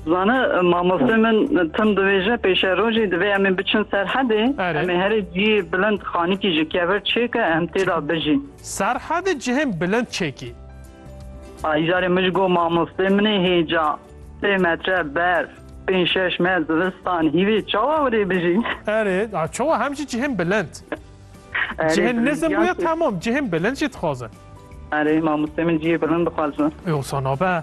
Zane mamoste min tim divêje pêşe rojê divê em ê biçin serhedê em ê herê cihê bilind xanîkî ji kevir çêke em tê de bijîn. Serhedê cihên bilind çêkî. Ayîjarê min ji go mamostê min ê hêca sê metre berf pênc şeş me zivistan hîvê çawa wirê bijî. Erê çawa hem jî cihên bilind. Cihên nizim bûye temam cihên bilind jî dixwazin. Erê mamoste min cihê bilind dixwazin. Ewsa nabe.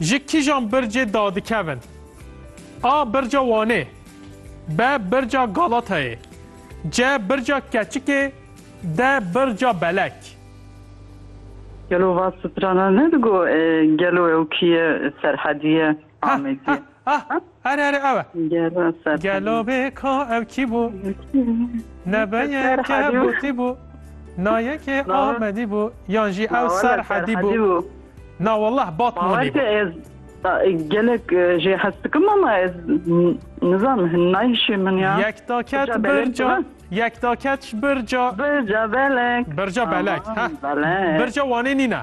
Ji kîjan bircê dadikevin? A. Birca Wanê B. Birca Galatayê C. Birca Keçikê D. Birca Belek Gelo va strana ne digo gelo ew kî ye serhedî ye Amedî ye. Erê erê ew e. Gelo Serhadi. Gelo bê ka ew kî bû? Nebe yeke botî bû. Na yekê Amedî bû. Yan jî ew Serhedî bû. Na wallah Batmanî bû. Gelek jê hez dikim ama ez nizanim hin nayişê min ya. Yek daket birca. Yek daket ji birca. Birca belek. Birca belek. Birca wanê nîne.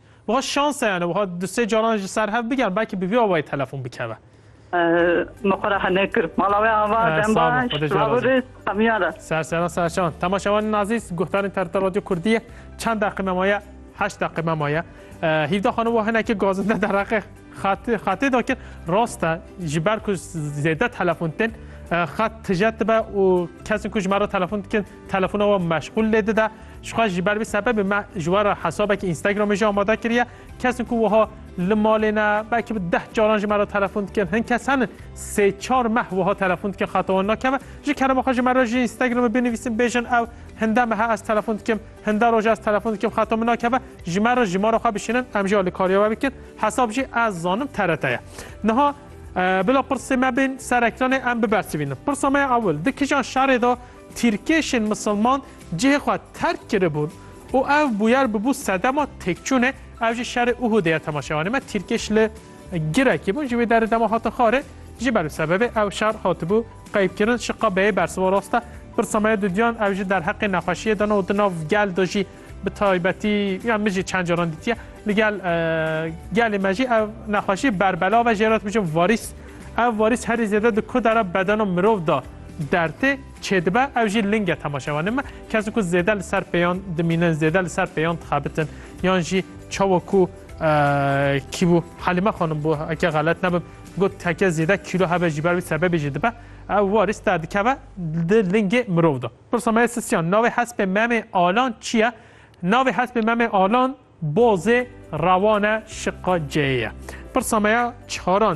Wiha şans e yani wiha du sê caran ji ser hev bigerin belkî bi vî awayî telefon bikeve. Me xwe re nekir. Mala wê ava dem baş. Selav rêz hemiyan re. Ser seran ser şan. Temaşewanên azîz guhdarên TRT Radyo Kurdiyê çend deqî me maye? Heşt deqî me maye. Hîvda xanûm wa hinekî gazinde dereqê xatê da kir. Rast e ji ber ku zêde telefon tên xat tije dibe û kesên ku ji me re telefon dikin Telefona we meşxûl lê dide. Jixwe ji ber vî sebebê me ji we re hesabekî Instagramê jî amade kiriye. Kesin ku wiha li malê ne belkî bi deh caran ji me re telefon dikin. Hin kes henin sê çar meh wiha telefon dikin xeta wan nakeve. Ji kerema xwe ji me re ji Instagramê binivîsin bêjin ew hinde mehe ez telefon dikim, hinde roje ez telefon dikim xeta min nakeve. Ji me re jimara xwe bişînin em jî alîkariya we bikin. Hesab jî ez zanim TRT ye. Niha Bila pirsê me bên ser ekranê em bibersivînin. Pirsa me ya ewil, di kijan şerê de Tîrkêşên misilman cihê xwe terk kiribûn û ev bûyer bûbû sedema têkçûnê, ev jî şerê Uhûdê ye tema şevanê me tîrkêş li Girekê bûn ji wê derê dema hatin xwarê ji ber wî sebebê ew şer hatibû qeybkirin şiqabeyê bersiva rast e pirsa me ye di duyan ew ji derheqê nexweşiyê de ne û di nav gel de jî Bi taybetî ya min jî çend caran dîtiye li gel gelê me jî ev nexweşî berbela ve jêrat bijin varîs. Ev varîs herî zêde di ku dera bedena mirov da dertê çêdibe ew jî linge temaşevanê me kes ku zêde li ser pêyan dimînin zêde li ser pêyan dixebitin yan jî çawa ku kî bû Halîme xanim bû eke xelet nebim got teke zêde kîlo hebe jî ber wî sebebê jî dibe ew warîs derdikeve di lingê mirov da. Pirsa me ya sisiyan, navê hespê Memê Alan çi ye? Navê hespê Memê Alan Bozê Rewane Şiqaceyê ye. Pirsa me ya çaran,